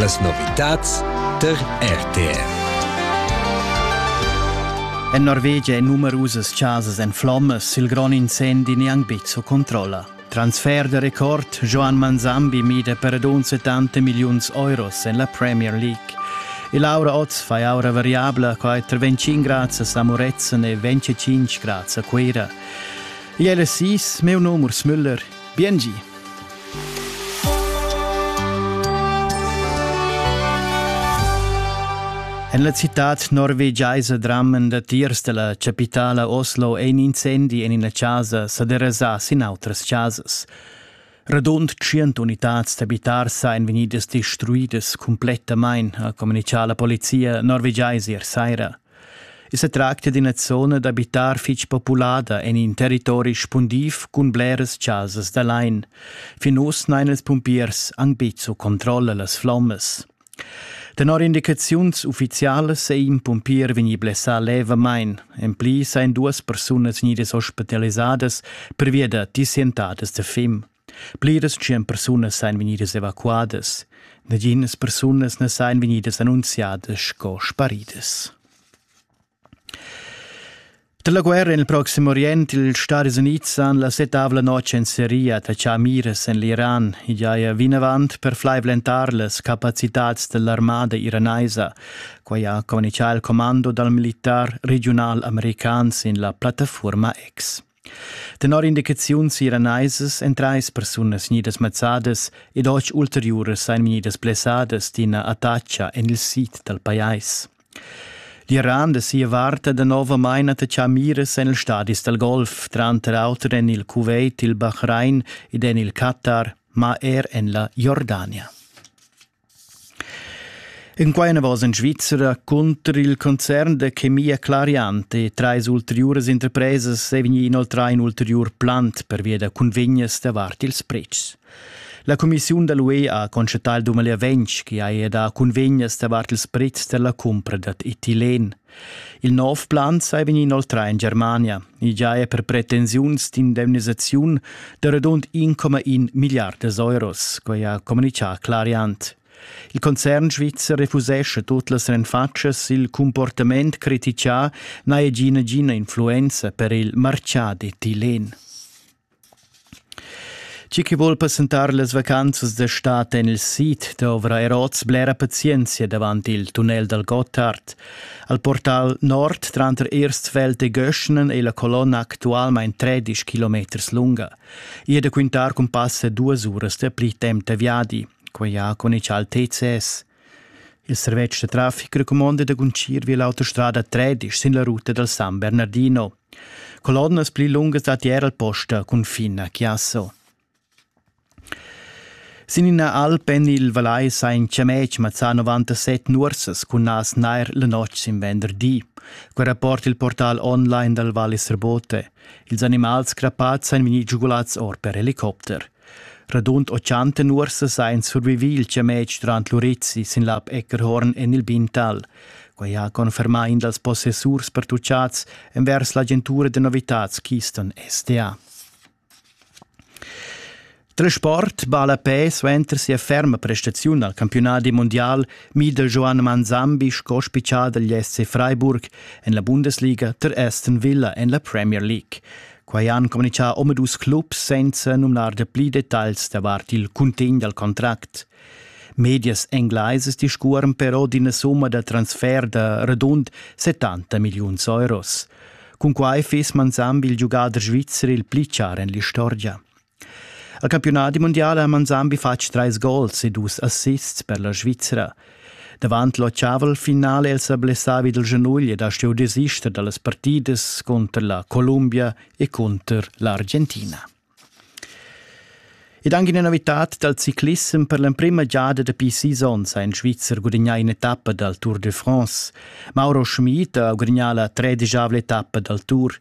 Las novitads tar RTR. En Norvegia ein numerusas casas en flommas, il grond incendi neanc bizzo controlla. Transfer de record Joan Manzambi mida per adon 70 milliuns euros en la Premier League. E Laura Oz fa aura variabla qua 25 grazie a Moretzen e 25 grazie a Queira. Il LSIs, meu nom Urs Müller, Biengi. En la citad norvegiaisa drammen datiers della capitala Oslo ein incendi en ina casa sa derasà sin outras chasas. Radund 100 unitads d'abitars ein vegnidas destruidas completamain, ha communicar la polizia norvegiaisa ier saira. I sa tracta d'ina zona d'abitar fitg populada en in territori spundiv cun bleras chasas da lain. Fin uss n'hain ils pumpiers anc betg su controlla las flommas. Tenor indicaziuns uffizialas è in pumpier vegnì blessà levamain. En pli sain duas persunas vegnidas ospitalisadas pervia da disientadas da fim. Pliras tschient persunas ein vegnidas evacuadas. Naginas persunas ne san vegnidas annunziadas sco sparidas. Dalla guerra nel Proximo Orient, ils Stati Uniti han la setavla notg en Siria tachà miras en l'Iran e giaja vinavant per flaivlentar las capacitats dell'armada iranaisa. Quai ha comunichà il commando dal militar regional american sin la plattafuorma X. Tenor indicaziuns iraneisas èn trais persunas vegnidas mazzadas ed otg ulteriuras ein vegnidas blessadas d'ina attacha en il sid dal pajais. L'Iran da sia vart ha danovamain attachà miras en ils stadis dal Golf, tranter auter en il Kuwait, il Bahrain ed en il Qatar, ma er en la Jordania. En quei anavos en Svizra cunter il concern da chemia Clariante e treis ulteriuras interpresas ei vegni inoltrai in ulteriur plan pervia da cunvegnas davart ils pretschs. La commissiun dall'UE ha constatau il dumber ventg che ha da cunvegnas davart ils pretschs dalla cumpra dad etilен. Il nov plan sai vegnir inoltrà in Germania. I già è per pretensiuns d'indemnisaziun da radund 1,1 miliardas euros, quai ha communichà Clariant. Il concern svizzer refusescha tut las renfatschas, il comportament critichà n'ha egina gina influenza per il martgà d'etilen. Chi chi voul passentar las vacanzas d'estat en il sid dovra er oz blera pazienzia davant il tunnel dal Gottard. Al portal nord tranter Erstfeld e Göschnen è la colonna actualmain 13 kilometers lunga. I è da quintar cun passa duas uras da pli temp da viadi. Quai ha con ich altezs. Il servetsch da traffic recumonda da guntgir vi l'autostrada 13 sin la ruta dal San Bernardino. Colonnas pli lungas datti er al posta cunfin a Chiasso. Sin ina alp en il Valais sa in chamec mazzà 97 nursas cun nas nair la notg sin venderdi. Quel rapport il portal online dal Valle Serbote. Ils animals crappads han vegnì giugulads or per helicopter. Radund 80 nuorsas ein survivi il chametg durant l'Urizzi sin lab Eckerhorn en il Bintal. Quei ha confermà in dals possessurs pertucciats envers l'agentura de novitads Keystone SDA. Transport balla pe suenter sia ferma prestaziun al campionadi mondial mida Joan Manzambi sco spiccià dagl SC Freiburg en la Bundesliga ter Aston Villa en la Premier League. Quai han communitgà omadus clubs senza numnar da pli detagls davart il cuntegn dal contract. Medias englaisas discuoran però d'ina summa da transfer da radund 70 milliuns euros. Cun quai fiss manzamb il giugader svizzer il pli char en l'istorgia. El campiunadi mundial ha Manzambi fatg trais gols e dus assists per la Svizra. Davant l'ottavel finale el sa blessavi dal genugl ed ha stuiu desister dallas partidas cunter la Columbia e cunter l'Argentina. Ed anche una novità dal ciclissem per l'emprima giada dapi seasons ha in Svizzer gudagnà un'etappa dal Tour de France. Mauro Schmid ha gudagnà la tredegavla etappa dal Tour.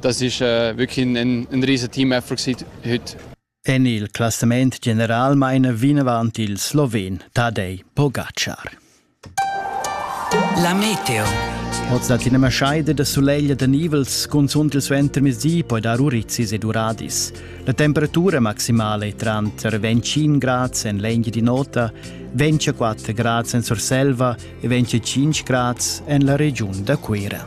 dass ich äh, wirklich ein, ein riesen Team-Effort heute. En il classament general meine vinavant il Sloven Tadej Pogačar. La Meteo. Oz dat in scheider de soleil de nivels consont il suenter mesi poi dar uricis ed uradis. La temperatura maximale tranter 25 grad en legna di nota, 24 grad en Surselva e 25 grad en la region da Cuira.